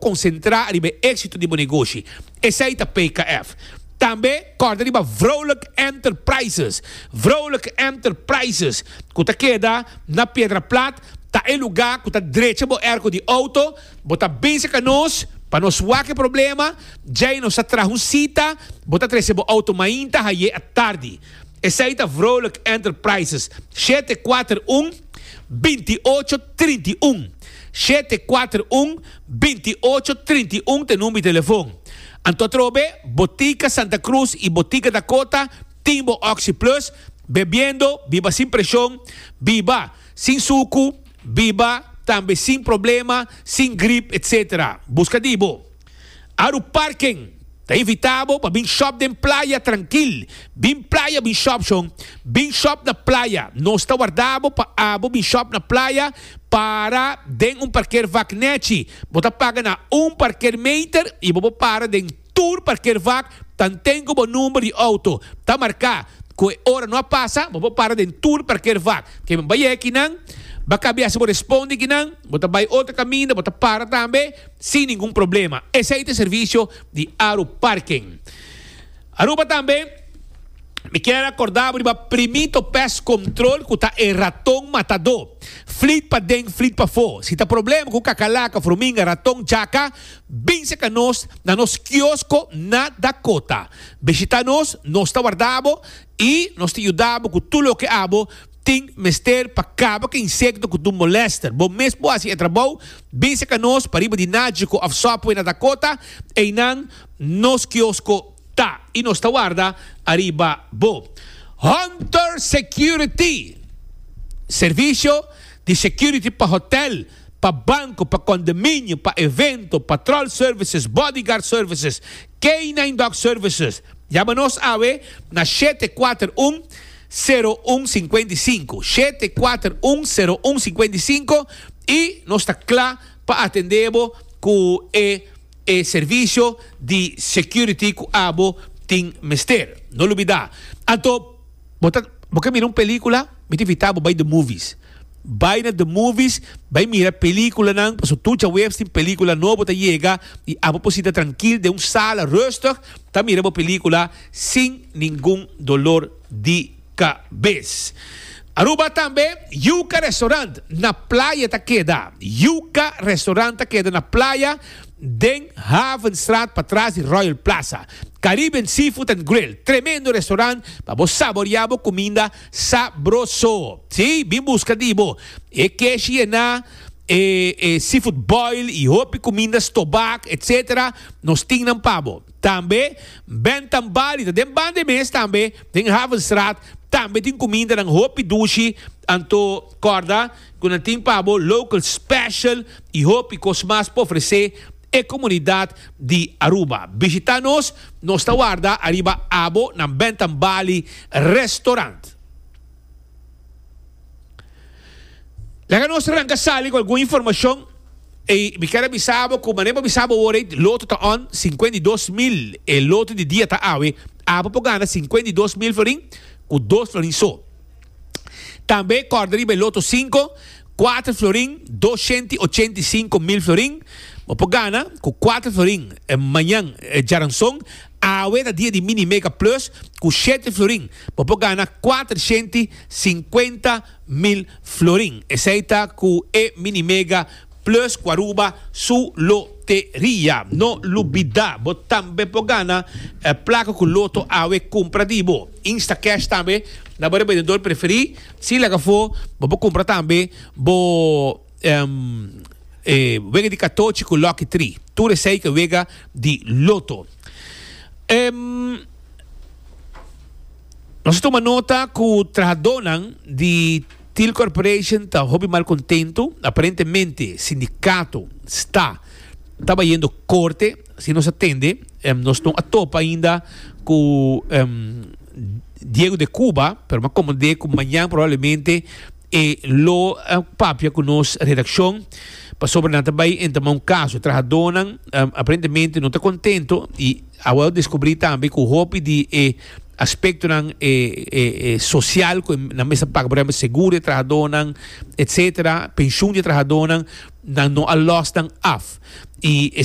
Concentra riba e exito di bo negoshi, esey ta PKF. Tambe corda riba Vrolijk Enterprises. Vrolijk Enterprises, cu ta keda na Piedra Plat, ta e luga cu ta drecha bo erco di auto, bo ta bese ca nos pa nos wak e problema, djay nos ta traha un cita, bo ta trece bo auto mainta, haye a tardi. Esei ta Vrolijk Enterprises, shete kuater un, binti ocho, trinta i un. Shete kuater un, binti ocho, trinta i un ta e number di telefon. Anto atrobe, Botica Santa Cruz i Botica Dakota tin bo Oxi Plus, bebiendo, biba sin presion, biba sin suku, biba tambe sin problema, sin grip, etc. Buska di bo. Aru Parken ta invitá bo pa bin shòp den playa trankil. Bin playa bin shòp shon. Bin shòp na playa. Nos ta warda bo pa abo bin shòp na playa. Para den un parker vak nèchi. Bo ta paga na un parker meter i bo por para den tur parker vak tanten ku bo number di outo ta marká. Ku e ora no a pasa, bo por para den tur parker vak. Ke bo bai e kinan, ba kabiasa bo responde kinan. Bo ta bai otro kaminda, bo ta para tambe. Sin ningun problema. Esei ta e servisio di Aru Parking. Aruba tambe mi kier a korda bo riba Primito Pest Control ku ta e raton matadó. Flit paden, flit pafó. Si ta problema ku kakalaka, furminga, raton, jaka, binse ka nos na nos kiosko na Dakota. Bishita nos, nos ta warda bo i nos ta yuda bo ku tur loke abo. Tin mester pa kaba ku e insekto ku dun molester. Bo mes por hasi e trabou, bin seka nos pariba di Nagico of Subway na Dakota, einan nos kiosko ta i nos ta warda ariba bo. Hunter Security, servisio di security pa hotel, pa banco, pa condominio, pa evento, patrol services, bodyguard services, K-nine dog services. Yama nos awe na shete kuater un, sero un sinkuenta i sinku, shete kuater un, sero un sinkuenta i sinku, y nos ta kla pa atende bo ku e e servicio di security ku abo tin mester. No lubida. Anto. Bo ta bo ke mira un pelikula mi ta invitá bo bai The Movies bai na The Movies bai mira pelikulanan paso tur djaweps tin pelikula nobo ta yega i abo por sinta trankil den un sala rustig ta mira bo pelikula sin ningun dolor di kabes Aruba tambe Yuka Restaurant na playa ta keda Yuka Restaurant ta keda na playa. den Havenstraat patras di Royal Plaza. Caribbean Seafood and Grill, tremendo restaurant pa bo saborea bo cuminda sabroso. Sí, bin busca di bo e keshi ená, e e seafood boil y hopi cuminda stobak, etc. Nos tin nan pa bo. Tambe Bentham Bali ta den banda e mes tambe, den Havenstraat, tambe tin cumindanan hopi dushi, anto corda. Cu nan tin pa bo local special y hopi cos mas pa ofrece e comunidad di Aruba. Bishita nos, nos ta warda ariba abo nan Bentham Bali Restaurant. Laga nos ranca sali cu algun informacion y mi ker a bisa bo cu manera bo bisa bo awor ey loto ta on cincuenta y dos mil e loto di dia ta awe, abo por gana cincuenta y dos mil florin cu dos florin so. Tambe kòrda riba e loto sinku, kuater florin, dos shenta i ochenta i sinku mil florin. Bo por gana ku kuater florin mañan djaranson. Awe ta dia di Mini Mega Plus. Ku shete florin bo por gana kuater shenta i sinkuenta mil florin. Esei ta ku e Mini Mega Plus ku Aruba su loteria. No lubidá bo tambe por gana plaka ku loto awe kumpra di bo. Instacash tambe na bo rebendedor preferí. Si laga afó, bo por kumpra tambe bo wega di katochi ku lòki tri. Tur esei ta wega di loto. Nos a tuma nota ku trahadónan di. Thiel Corporation ta hopi mal contento, aparentemente sindicato sta tabayendo corte, si nos a tende nos no a topa ainda cu Diego de Cuba, pero mi a comprende cu mañan probablemente e lo papia cu nos redaccion pasobra nan ta bay entama un caso, trahadonan aparentemente no ta contento y awe descubri tambe cu hopi di e aspectonan e e social cu nan mester paga por ejemplo seguro di e trahadornan etcetera pensioen di e trahadornan nan no a los nan af y e.